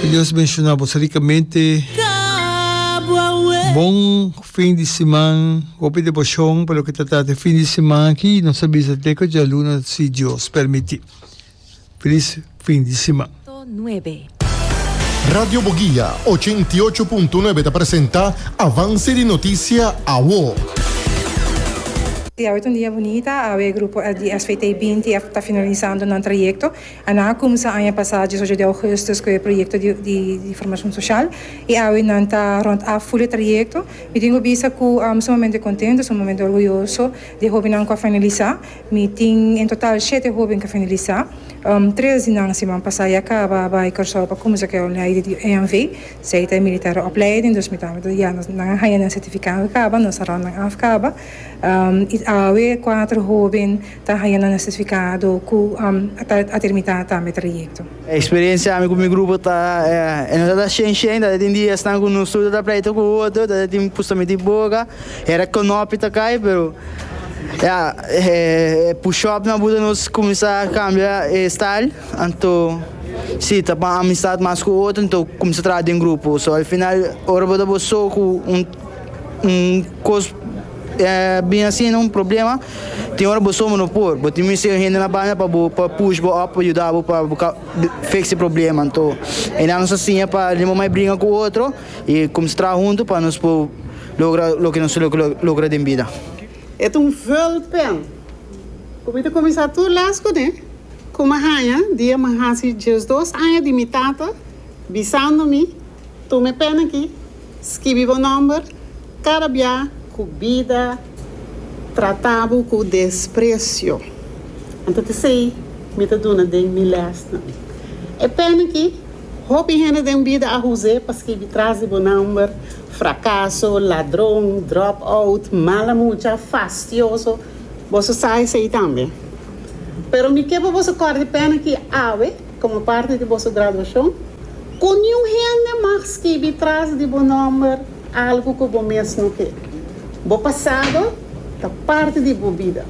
Ke Dios benshona bos rikamente. Bon fin di siman. Hopi deboshoon pa loke ta trata e fin di siman aki. Nos ta bisa te ku djaluna si Dios permiti. Felis fin di siman. Radio Boguia ochenta i ocho punto nuebe ta presenta avanse di notisia awo. Di awe ta un dia bunita. Awe grupo di SVT binti ta finalisando nan trayekto. Ana a kumsa aña pasá dies ocho di augustus ku e proyekto di formashon soshal i awe nan ta rònt af ful e trayekto. Mi tin ku bisa ku am sumamente kontentu, sumamente orguyoso di e hóbennan ku a finalisá. Mi tin en total shete hóben ku a finalisá. Tres di nan siman pasá ya kaba bai Kòrsou pa kumsa ku e opleiding di EMV, sei ta e militèr opleiding, dus mi tambe ya nan a haña nan sertifikado kaba, nos a rònt nan af kaba. I awe kuater hóben Ta haña nan certificado cu a termina tambe trayecto. Experiencia ami cu mi grupo ta e nos a ta shen shen tada tin di esnan cu nos tur ta ta pleito cu otro tada tin pusta miti boca hera conopi ta cay pero ya e push up na buta nos cuminsa cambia e style anto si ta pan amistad mas cu otro anto cuminsa traha den grupo so al final ora bo ta bo so cu un Un kos bin asina un problema, tin ora bo somer no por, bo tin mester hende na banda pa bo pa push bo op, pa yuda bo pa bo ka fix e problema, anto e nan nos a siña pa limon mai bringa ku otro i kumsa traha huntu pa nos por logra loke nos lo logra den bida. E ta un vulpen ku mi ta kuminsá tur lès kuné, ku mi a haña dia mi a hasi diesdos aña di mi tata bisando mi, Tuma e pèn aki, Skibi bo nòmber kada bia ku bida trata bo ku despresio. Anto ta esei mi ta duna den mi lèsnan. E pèni ki hopi hende den bida a hus'é pa skibi tras di bo nòmber, frakaso, ladron, drop-out, mala mucha, fastioso, boso sa esei tambe. Pero mi ke pa boso kòrda e pèni ki awe. Como parti di boso graduacion, cu niun hende mag skibi tras di bo nomber algu cu bo mes no ke. Bo pasado ta parti di bo bida.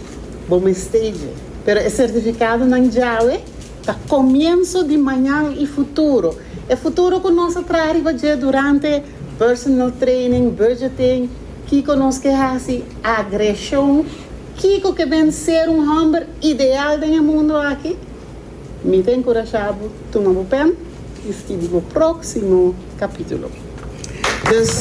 Bo mester dje. Pero e certificadonan djawe ta comienso di mañan y futuro. E futuro cu nos a traha riba dje durante personal training, budgeting, kico nos ke haci, agresion, kico ke ben ser un homber ideal den e mundo aki. Mi ta enkurashá bo tuma bo pen i skibi bo próksimo kapítulo. Dus.